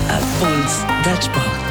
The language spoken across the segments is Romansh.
Affons da sport.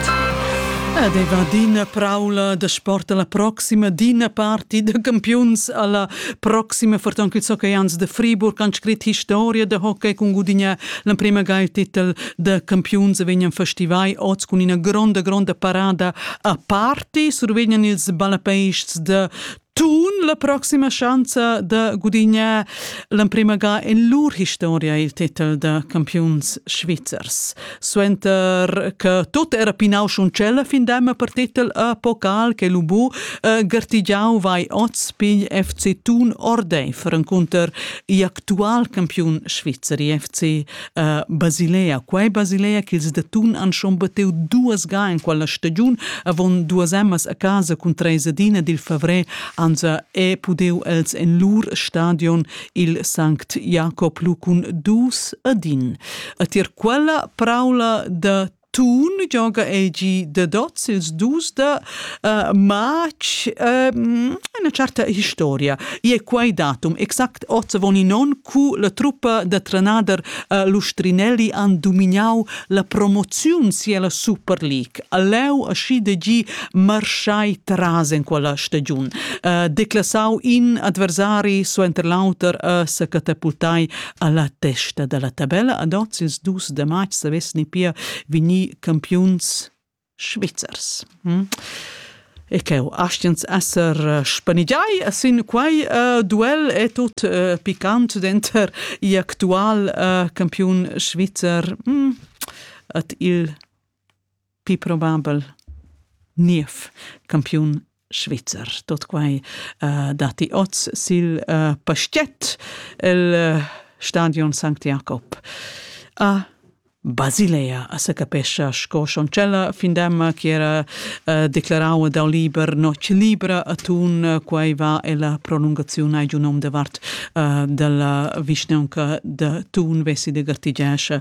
Ed ei va d'ina praula da sport alla proxima, d'ina parti da campiuns alla proxima, fortan il hockey ans de Friburg han scrit historia da hockey con gudignar l'emprema ga il titel da campiuns e vegnan festivai oz con ina gronda gronda parada a parti, survegnan ils ballapeists de Tun la proxima schanza da gudignar l'emprima ga en lur historia il titel da campiuns svizzers. Suenter che tot era pinau schon cella fin dema per titel a Pokal che Lubu eh, gartigiau vai oz pigl FC Tun ordei for encunter i actual campiun Svizzeri FC uh, Basilea. Quai Basilea ch'ils d'atun han schon bateu duas ga en quella stagiun, avon duas emmas a casa cun treis adina dil favrer anza e pudeu els en lur stadion il Sankt Jakob lu cun dus adin. A tier quella praula da Tun gioga egi dad oz ils dus da uh, matg uh, una certa historia. E quai datum exact ozzavon in on cu la truppa da trenader uh, Lustrinelli han domignau la promoziun sia Super League. Aleu aschi de gi marschai tras in quella stagiun. Uh, declasau in adversari suenter l'auter uh, sa catapultai a la testa da la tabella. Ad oz ils dus da matg savessi pia vegnir campiuns svizzers. Hm? E cheu astiens esser eh, spanigiai sin quai uh, duel è tut uh, picant denter i actual uh, campiun svizzer hm, at il Pli probabel niev campiun svizzer. Tot quai uh, datti oz sil uh, pastet el uh, stadion Sankt Jakob. A Basilea a se capescia sco Schoncella findemma che era uh, declarau dau liber noc libra a tun uh, quai va e la prolungazione ai giunom de vart uh, della vischneanca de Tun vesi de gartigescia